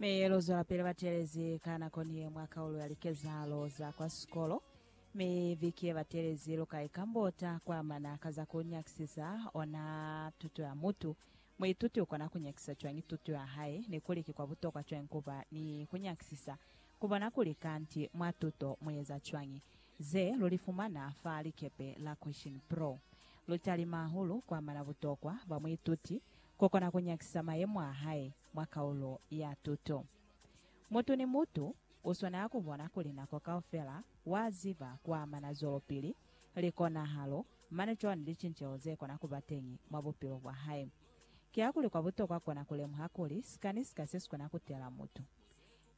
mi luzwelapili batelezi ka nako niye mwa kaulo ya likezahalo za kwa sikolo mi viki yebatelezi luka ikambota kwa amana ka za ku nyakisisa ona tuto ya mutu. Muituti ukona kunyakisisa cwañi tuto ya hae, ni kuli ki kwa butokwa cwañi kuba ni kunyakisisa kubona kuli kanti mwa tuto mueza cwañi? Ze lulifumana fa likepe la Question Pro lutalima hahulu kwa amana butokwa bwa muituti kukona kunyakisisa mayemo a hae. mwa kaulo ya tuto. Mutu ni mutu u swanela ku bona kuli nako kaufela wa ziba ku amana zwelopili, likonahalo, mane cwalo ni licinceho ze kona ku ba teñi mwa bupilo bwa hae. Kihakuli kwa butokwa kona ku lemuha kuli sika ni sika se si kona ku tela mutu.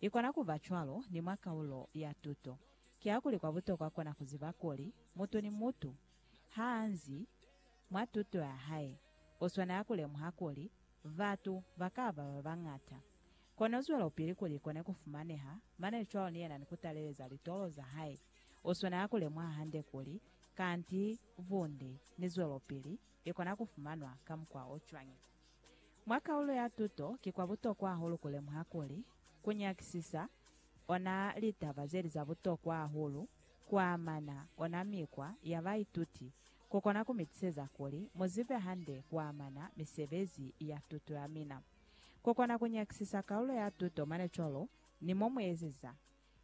I kona ku ba cwalo ni mwa kaulo ya tuto. Kihakuli kwa butokwa kona ku ziba kuli mutu ni mutu ha a nzi, Mwa tuto ya hae, u swanela ku lemuha kuli batu ba ka ba ba bañata. Kono zwelopili kuli i kone ku fumaneha mane cwalo ni yena ni ku taleleza litolo za hae, u swanela ku lemuha hande kuli kanti bunde ni zwelopili i kona ku fumanwa ka mukwa o cwañi. Mwa kaulo ya tuto, ki kwa butokwa hahulu ku lemuha kuli ku nyakisisa ona litaba ze li za butokwa hahulu ku amana ona mikwa ya baituti Ku kona ku mi tiseza kuli mu zibe hande ku amana misebezi ya tuto ya mina. Ku kona ku nyakisisa kaulo ya tuto mane cwalo ni mo mu ezeza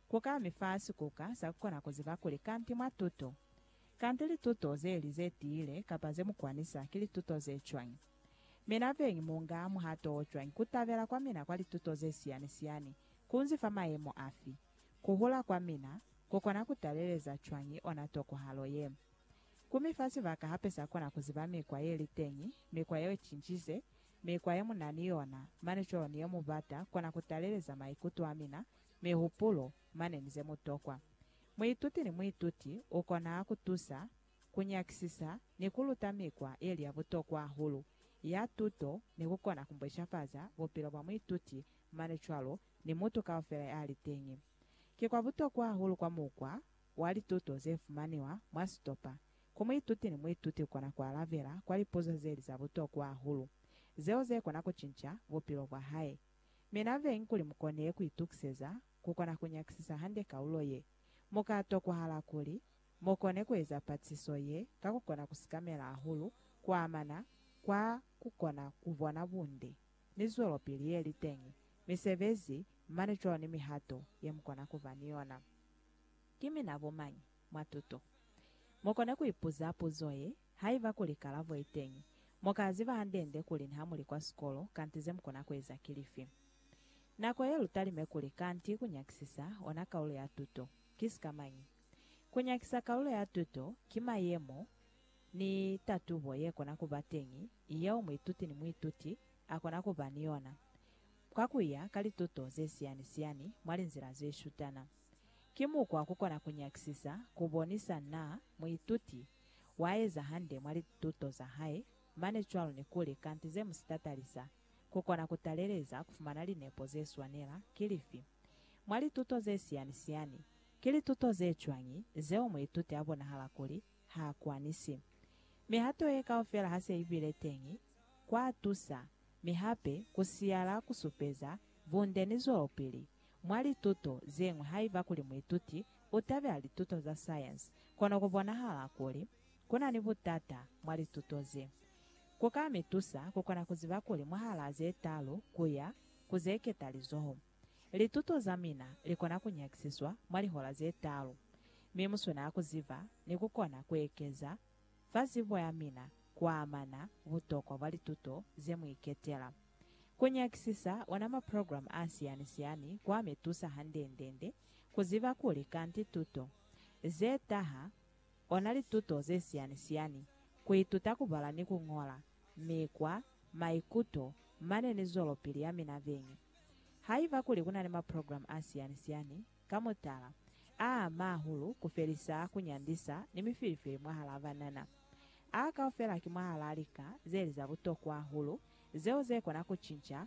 ku ka mi fa sikuka sa ku kona ku ziba kuli kanti mwa tuto, kanti lituto ze li ze tiile kapa ze mu kwanisa ki lituto ze cwañi. Mina beñi mu nga muhato o cwañi? Ku tabela kwa mina kwa lituto ze siyani-siyani ku nzi fa mayemo afi? Ku hula kwa mina ku kona ku taleleza cwañi ona tokohalo ye? Ku mi fa sibaka hape sa kona ku ziba mikwa ye li teñi, mikwa yeo cincize, mikwa ye mu na ni yona, mane cwalo ni ye mu bata kona ku taleleza maikuto a mina, mihupulo, mane ni ze mu tokwa. Muituti ni muituti u kona ku tusa, ku nyakisisa, ni ku luta mikwa ye li ya butokwa hahulu ya tuto ni ku kona ku mbweshafaza bupilo bwa muituti mane cwalo ni mutu kaufela ya li teñi. Ki kwa butokwa hahulu kwa mukwa wa lituto ze fumaniwa mwa sitopa, ku muituti ni muituti u kona ku alabela kwa lipuzo ze li za butokwa hahulu, zeo ze kona ku cinca bupilo bwa hae. Mi na veñi kuli mu kone ku itukiseza ku kona ku nyakisisa hande kaulo ye, mu ka tokwahala kuli mu kone ku eza patiso ye ka ku kona ku sikamela hahulu ku amana kwa ku kona ku bona bunde ni zwelopili ye li teñi, misebezi, mane cwalo ni mihato ye mu kona ku ba ni yona. Ki mina bo mañi? Mwa tuto, mu kona ku ipuza puzo ye, Haiba kuli kalabo i teñi, mu ka ziba hande-nde kuli niha mu li kwa sikolo, kanti ze mu kona ku eza ki lifi. Nako ye lu talime kuli kanti ku nyakisisa ona kalulo ya tuto. Ki sikamañi? Ku nyakisa kalulo ya tuto ki mayemo ni tatubo ye kona ku ba teñi yeo muituti ni muituti a kona ku ba ni yona kwa ku ya ka lituto ze siyani-siyani mwa linzila ze shutana. Ki mukwa kukona kunyakisisa kubonisa na muituti waeza hande mwa lituto zahae, mane cwalo nikuli kanti zemusita talisa kukona kutaleleza kufumana linepo zeswanela ki lifi mwa lituto zesiyani-siyani. Ki lituto zecwañi zeo muituti abonahala kuli haakwanisi? Mihato ye kaufela hase ibile teñi kwatusa, mi hape kusiyala kusupeza bunde ni zwelopili Mwa lituto ze ñwi haiba kuli muituti u tabela lituto za sayensi, kono ku bonahala kuli ku na ni butata mwa lituto ze. Ku ka mi tusa ku kona ku ziba kuli mwahalaa ze talu ku ya ku ze keta lizoho, lituto za mina li kona ku nyakisiswa mwa lihola ze talu, mi mu swanela ku ziba ni ku kona ku ekeza fa zibo ya mina ku amana butokwa bwa lituto ze mu iketela. Ku nyakisisa ona maprogramu a siani-siani kwa mi tusa hande-nde-nde ku ziba kuli kanti tuto ze taha ona lituto ze siani-siani, ku ituta ku bala ni ku ñola, mikwa, maikuto, mane ni zwelopili ya mina beñi. Haiba kuli ku na ni maprogramu a siani-siani, Ka mutala, a ama hahulu ku felisa ku nyandisa ni mifilifili mwahalaa banana. A kaufela ki mwahalaa lika ze li za butokwa hahulu zeo ze kona ku cinca